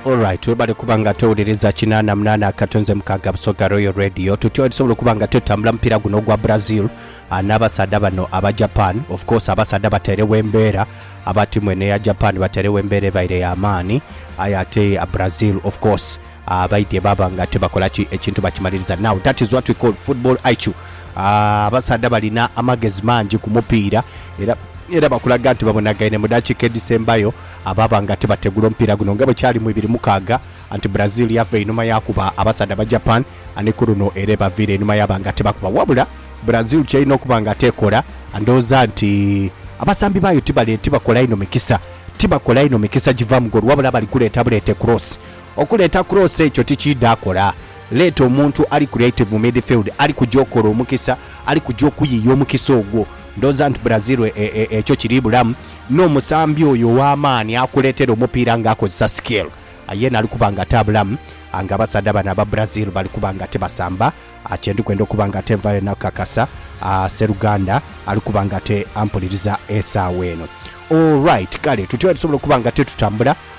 Alright webale kuba nga towuliriza kinaana munaana akato nze mukaaga busoga royal radio tutya wetusobola okuba nga twetambula mupiira guno ogwa brazil ah, n'abasaadha bano aba japan of course abasaadha batairewo embeera aba tiimu eno eya japan batairewo embeera ebaire ya maani aye ate ah, brazil of course Abaidhye baba nga tibakola ki ekintu bakimaliriza now that is what we call football IQ. Abasaadha balina amagezi mangi ku mupiira era era bakulaga nti babonagaine mu dakiika edhisembayo baba nga tibategula omupiira guno nga bwe kyali mu ibiri mukaaga anti Brazil yava einhuma yaakuba abasaadha ba Japan ni ku luno era ebaviira einhuma yaba nga tibakuba wabula Brazil ky'erina okuba nga tekola ndhooza nti abasambi baayo tibale tibakola inho mikisa tibakola inho mikisa giva mu goolo wabula bali kuleeta buleete cross Okuleeta Cross ekyo tikiidha akola. Leeta omuntu ali creative mu midfield ali kuja okola omukisa, ali kuja okuyiiya omukisa ogwo. Ndhooza nti Brazil e, e, ekyo kiri bulamu. N'omusambi oyo ow'amaani akuleetera omupiira nga akozesa skill, yeena ali kuba nga atabulamu. Nga abasaadha bano aba Brazil bali kuba nga tibasamba, kye ndi kwenda okuba nga te nvaayo na kukakasa, sseruganda ali kuba nga te ampuliriza esaawa eno. All right, kale tutyo bwe tusobola okuba nga te tutambula.